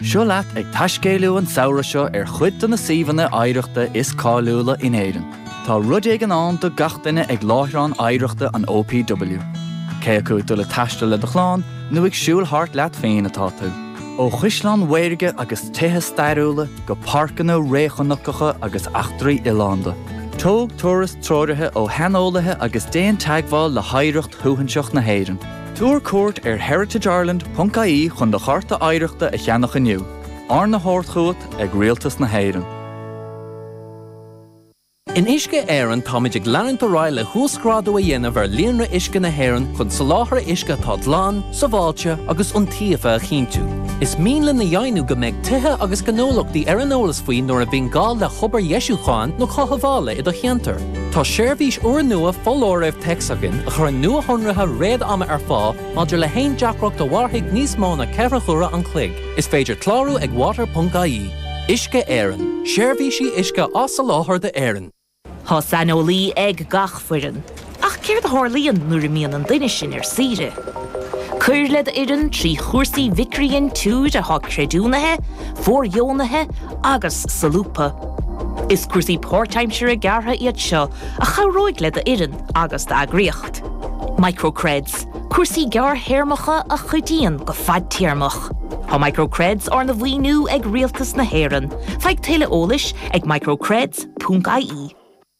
Seo leat ag taiscéaladh an samhradh seo ar chuid de na suíomhanna oidhreachta is cáiliúla in Éirinn. Tá rud éigin ann do gach duine ag láithreán oidhreachta an OPW. Cé acu ag dul ag taisteal le do chlann nó ag siúl thart leat féin atá tú, ó chaisleáin mhaorga agus tithe stairiúla go páirceanna réchnocacha agus eachtraí oileánda, tóg turas treoraithe ó shaineolaithe agus déan teagmháil le hoidhreacht shuaithinseach na hÉireann. Tabhair cuairt ar heritageIreland ponc ie chun do chárta oidhreachta a cheannach inniu, arna thabhairt chugat ag Rialtas na hÉireann. In Uisce Éireann táimid ag leanúint ar aghaidh le huasghrádú a dhéanamh ar líonra uisce na hÉireann chun soláthar uisce atá glan, sábháilte agus iontaofa a chinntiú. Is mian linn a dheimhniú go mbeidh tithe agus gnólachtaí ar an eolas faoi nuair a bhíonn gá le hobair dheisiúcháin nó chothabhála i do cheantar. Tá seirbhís úrnua foláirimh téacs againn a chuireann nuashonruithe réad-ama ar fáil maidir le haon deacracht a mhairfidh níos mó ná ceithre huaire an chloig. Is féidir clárú ag water.ie. Uisce Éireann, seirbhísí uisce á soláthar d'Éirinn. Tá saineolaí ag gach foireann. Ach céard a tharlaíonn nuair a imíonn an duine sin ar saoire? Cuir le d'fhoireann trí chúrsaí micridhintiúir atá creidiúnaithe, fóirdheonaithe agus solúbtha. Is cúrsaí páirtaimseartha gearra iad seo a chabhróidh le do fhoireann agus d'eagraíocht. Microcreds, cúrsaí gearrthéarmacha a chuidíonn go fadtéarmach. Tá Microcreds arna mhaoiniú ag Rialtas na hÉireann. Faigh tuilleadh eolais ag microcreds.ie.